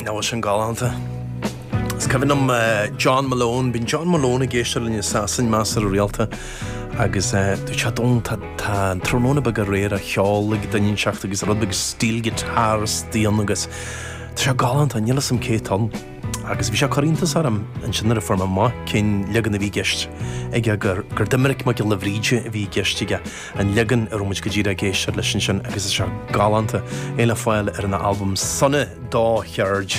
Nach bhfuil sin galánta. Is cuimhin liom John Malone, bíonn John Malone ag éisteacht linn i Sasain measartha rialta agus dúirt sé, Dónall, tá Tráthnóna Beag Aréir á cheol ag duine inteacht agus rud beag stíl guitar istigh ann agus Tá sé galánta, níl a fhios agam cé atá ann. Agus bhí sé ag cur iontas orm ansin nuair a fuair mé amach cén leagan a bhí i gceist aige, gur Doimnic Mac Giolla Bhríde a bhí i gceist aige, an leagan a raibh muid go díreach ag éisteacht leis ansin agus is ea, galánta, é le fáil ar an albam Sona Do Cheird.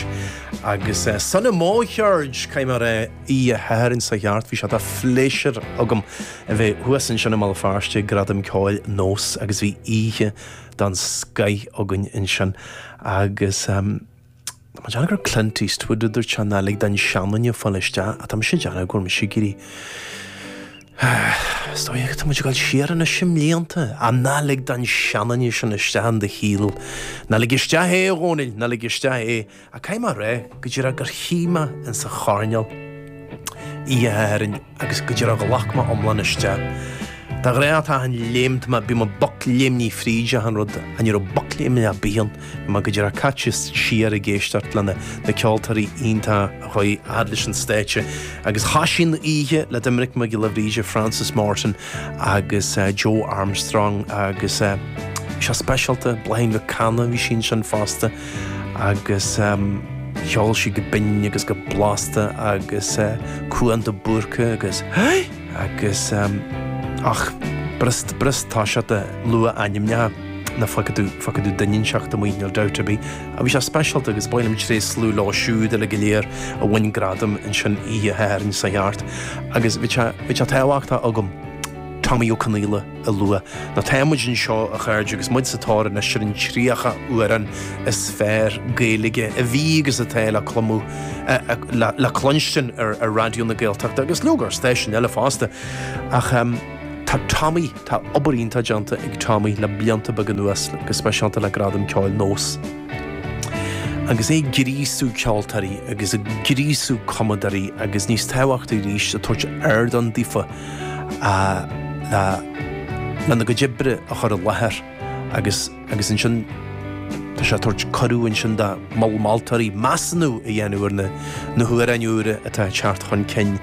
Agus sona mo cheird! Caithfidh mé a rá, oíche Shathairn seo thart, bhí sé de phléisiúr agam a bheith thuas ansin i mBéal Feirste ag Gradaim Cheoil Nós agus bhí oíche den scoith againn ansin agus, Tá mé ag déanamh gur Clint Eastwood a dúirt é ná lig don seanduine a fáil isteach ach tá mise ag déanamh go bhfuil mise ag éirí Is dóigh go tá muid ag dul siar anois i mblianta ach ná lig don seanduine sin isteach in do shaol. Ná lig isteach é, a Dhónaill, ná lig isteach é. Ach caithfidh mé a rá go díreach gur shuigh mé insa choirnéal oíche Shathairn. agus go díreach ghlac mé iomlán isteach. De ghnáth a taithn léimt me bím ag bocléimnigh fríd achan rud ach ní raibh bocléimnigh ar bith ann. Bhí mé go díreach caite siar ag éisteacht le na ceoltóirí iontach a chuaigh fhad leis an stáitse agus thoisigh an oíche le Doimnic Mac Giolla Bhríde, Frances Morton agus Joe Armstrong agus bhí sé speisialta, Bláithín Mhic Cana bhí sí ansin fosta. Agus cheol sí go binn agus go blasta agus Cuan de Búrca agus Hey! Agus ach b'fhurast b'fhurast toiseacht ag lua ainmneacha nó fágfaidh tú fágfaidh tú duine inteacht amuigh, níl dabht ar bith. Ach bhí sé speisialta agus ba mhaith liom tréaslú leo siúd uilig go léir a bhain gradam ansin Oíche Shathairn seo thart. Agus bhí sé bhí sé tábhachtach agam Tomaí Ó Conghaile. a lua. Nó tá muid anseo, a chairde, agus muid sa tóir anois ar an 30 amhrán is fearr Gaeilge a bhí agus atá le clumadh, le cluinstin ar Raidió na Gaeltachta agus leoga ar stáisiúin eile fosta. Ach tá Tomaí, tá obair iontach déanta ag Tomaí le blianta beaga anuas, go speisialta le Gradaim Cheoil Nós. Agus é ag gríosú ceoltóirí agus ag gríosú cumadóirí agus níos tábhachtaí arís ag tabhairt ardán daofa, lena gcuid oibre a chur i láthair agus agus ansin tá sé ag tabhairt cuireadh ansin do mol moltóirí measúnú a dhéanamh ar na na hamhráin úra atá ag teacht chun cinn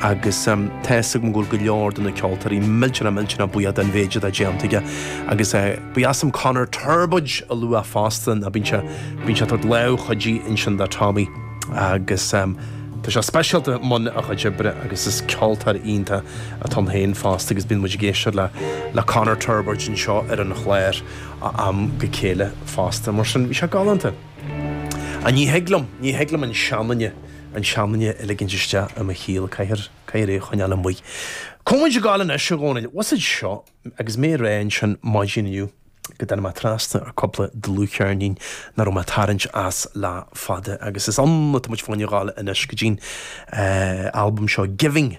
agus tá fhios agam go bhfuil go leor de na ceoltóirí millteanach millteanach buíoch den mhéid atá déanta aige agus Ba dheas liom Conor Torbóid a luadh fosta, nó bíonn sé, bíonn sé ag tabhairt lámh chuidithe ansin do Tommy agus tá sé speisialta i mbun a chuid oibre agus is ceoltóir iontach atá ann féin fosta agus bíonn muid ag éisteacht le, le Conor Torbóid anseo ar an chlár ó am go chéile fosta. Mar sin, bhí sé galánta. Ach ní thig liom, ní thig liom an seanduine, an seanduine a ligint isteach i mo shaol, caithfear, caithfear é a choinneáil amuigh. Cómhais a gabháil anois, a Dhomhnaill, what's it seo? Agus mé ag rá ansin maidin inniu go dtáinig mé trasna ar cúpla dlúthcheirnín nach raibh mé ag tarraingt as le fada agus is ann atá muid féin ag gabháil anois go dtí'n albam seo Giving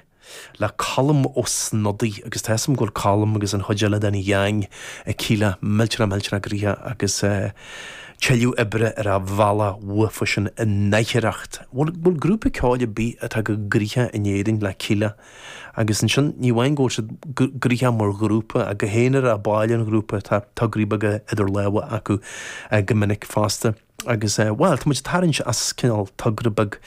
le Colm Ó Snodaigh agus tá a fhios agam go bhfuil Colm agus an chuid eile den gheang ag Kíla millteanach millteanach gnoitheach agus tuilleadh oibre ar a' bhealach uathu sin in aicearracht. Bhuel, bhfuil grúpa ceoil ar bith atá chomh gnoitheach in Éirinn le Kíla Agus ansin, ní amháin go bhfuil siad gnoitheach mar ghrúpa, ach go haonarach, baill an ghrúpa, tá tograí beaga idir lámha acu go minic fosta. Agus, bhuel, tá muid a' tarraingt as cineál togra beag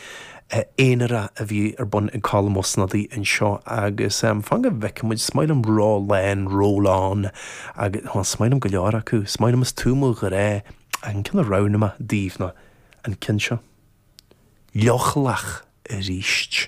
aonarach a bhí ar bun ag Colm Ó Snodaigh anseo agus fan go bhfeice muid, is maith liom Rólán, Rólán agus, bhuel, is maith liom go leor acu, is maith liom, is tú mo ghrá ach an ceann a roghnaigh mé daoibh ná an ceann seo. Leochaileach aríst.